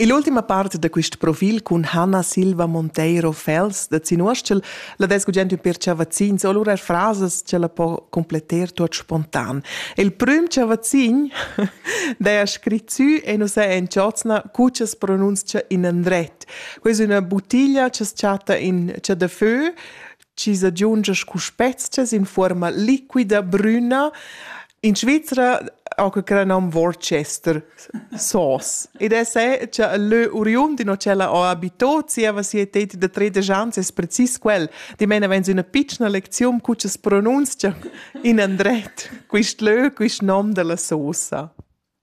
Ill'ultima part da quest profil cun Hanna Silva Monteiro Fels da Zinuostschel la desgugent ün per chavazzins o lura frasas che la po completter tuot spontan. Il prüm chavazzin daja scrit sü e nu s'è in chozna cu cha's pronunzcha in andret. Quai es üna buttiglia cha's chatta in chadafö chi s'aggiungia scu spezcha in fuorma liquida brüna. In Svizra ho que cra nom Worcester sauce. Ed es è cha lö oriund in ho ch'ella ho abito, zieva sia teti da tredisch ans es precis quel. Dimena vains üna pitschna lecziun cu cha's pronunzcha in andret quist lö, quist nom da la sosa.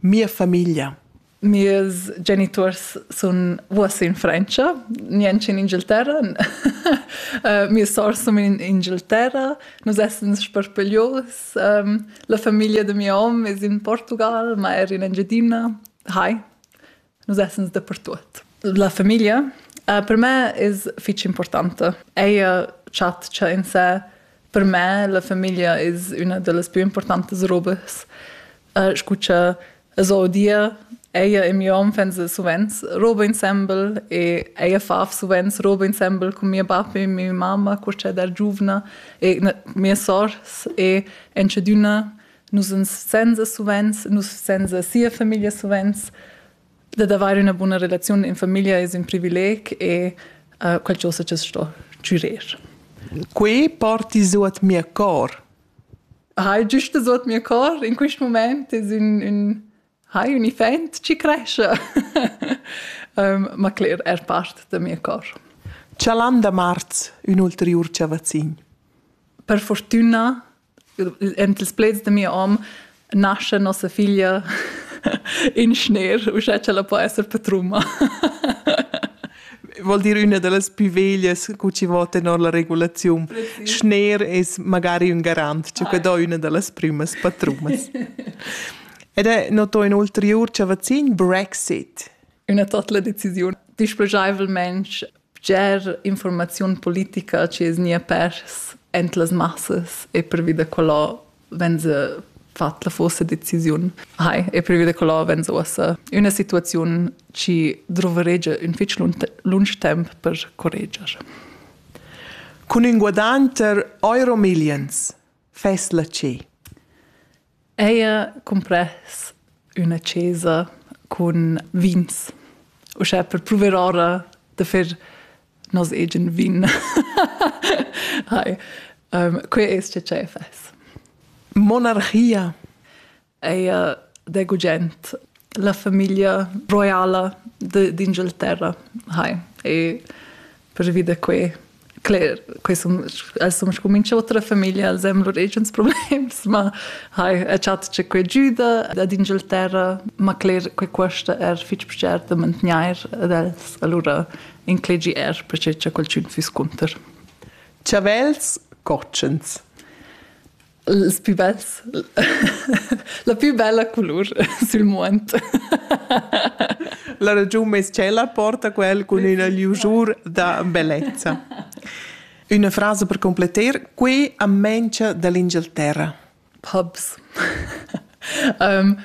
Mia famiglia. Mies geniturs sun uossa in Frantscha, niench in Inghilterra. Mia sour sun in Inghilterra. Nus essans sparpaglios. La famiglia da mia hom es in Portugal, ma er in Engiadina. Hai. Nus essens dapertuot. La famiglia uh, per me es fich importanta. Ella chatscha in se. Per me la famiglia es üna da las plü importantas robas. Uh, scucha so dia ella e mio hom fan sovents roba ensemble e ella fa sovents roba ensemble con mia pappa e mia mamma quando c'è da giovane e mia sors e en chaduna nus uns senza suvenz, nus senza sia famiglia suvenz. Dad avere una buona relazione in famiglia è un privileg e uh, quel ciò se sto giurer. Quei porti su at mia cor. Hai giusto su at mia cor in questo momento è un, un hai un event ci cresce. um, ma cler è parte da mia cor. Cialan da marz, un ulterior ciavazzin. Per fortuna en ils pleds de mio om nasce nossa figlia in schner uschè che la po esser patruma vuol dir una de las più veglias cu ci vo tenor la regulazione schner es magari un garant ci que do una de las primas patrumas ed è noto in ulterior cavazzin Brexit una total decisione displegevol mensch Bger informaziun politica chi es gnia pers aint las massas e pervi da quella venza fat la forsa decisiun. Hai, e pervi da quella venza uossa üna situaziun chi druveregia ün fich lunsch temp per correger. Cun ün guadagn ter euro millions fess la ce. Eir cumpress üna chesa cun vins, uschè per pruver ora da fer nos egen vin. Hai, que es che cher fess. Monarchia eir da gugent. La famiglia roiala d'Inghilterra, hai, e pervi da quei cler, quei sun, els sun scumincio otra famiglia, els han lur agens problems, ma hai a chat che quei giuda ad Inghilterra, ma cler, quei cuosta er fitg pichet da mantegnair ad els, allura inclegi er perché cha qualchün fiss cunter. Chavels cotschens ils pü bels. La pü bella culur sül muond. La ragiun meis tschella porta quel cun üna liusur da bellezza. Üna frasa per completer, qui am mengia dall'Inghilterra. Pubs. um,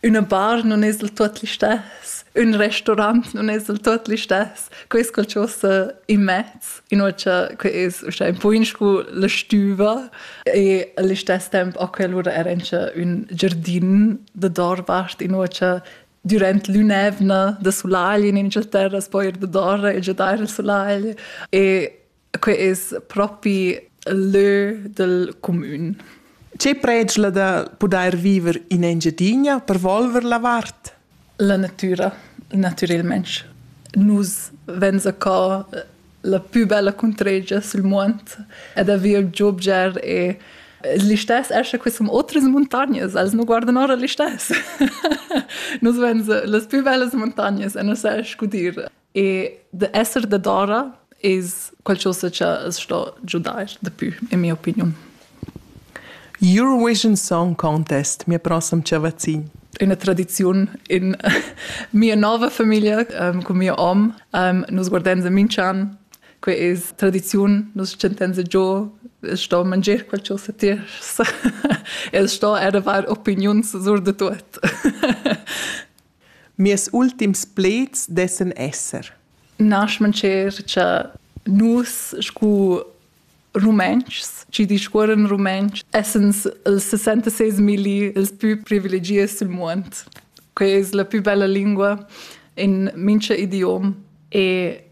Üna bar nun es del tuot listess, ün restaurant nun es del tuot listess, que es qualchosa immez, inoltre que es uschè ün poin scu la stüva e al istess temp a quell'ura era incha ün giardin da doorvart, inoltre dürant l'ün'eivna da sulagl in Inghilterra s'po eir da doora e giadair al sulagl e que es propi lö del cumün. Ce predschla da pudair viver in Engiadina per volver la vart? La natura, natürelmente. Nus venza ca la più bella contregia sul mond ed avere il giobger e l'istes esce qui som otras montagnes, els no guardan ora l'istes. Nus venza las più bellas montagnes e nos esce gudir E da esser dadora es qualchosa cha as sto giudair dapü, in mia opiniun. Eurovision Song Contest, mia prossem chavazin. Üna tradiziun in mia nova famiglia ähm, cun mia om. Ähm, nus guardains a Minch'an, que es tradiziun, nus chantains giò, es sto manger qualchosa tiers. es sto er avair opiniuns sur da tuot. Mirs ultims pleds dessan esser. Naschmancher cha nus scu Rumentschs chi discuorran rumentsch essans ils 66.000 ils pü privilegiats sül muond. Quai es la pü bella lingua in mincha idiom e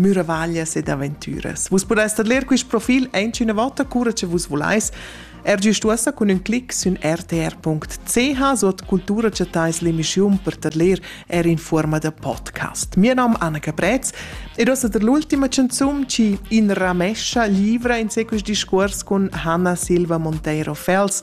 Müravaglias ed aventüras. Vus pudais tadler quist profil aint üna vota cura che vus vulais. Er gist uossa cun ün clic sün rtr.ch suot Cultura chattais l'emischiun per tadler er in fuorma da podcast. Mia nom Anna Caprez ed ossa der l'ultima canzun chi in ramescha livra in sequis discuors cun Hanna Silva Monteiro Fels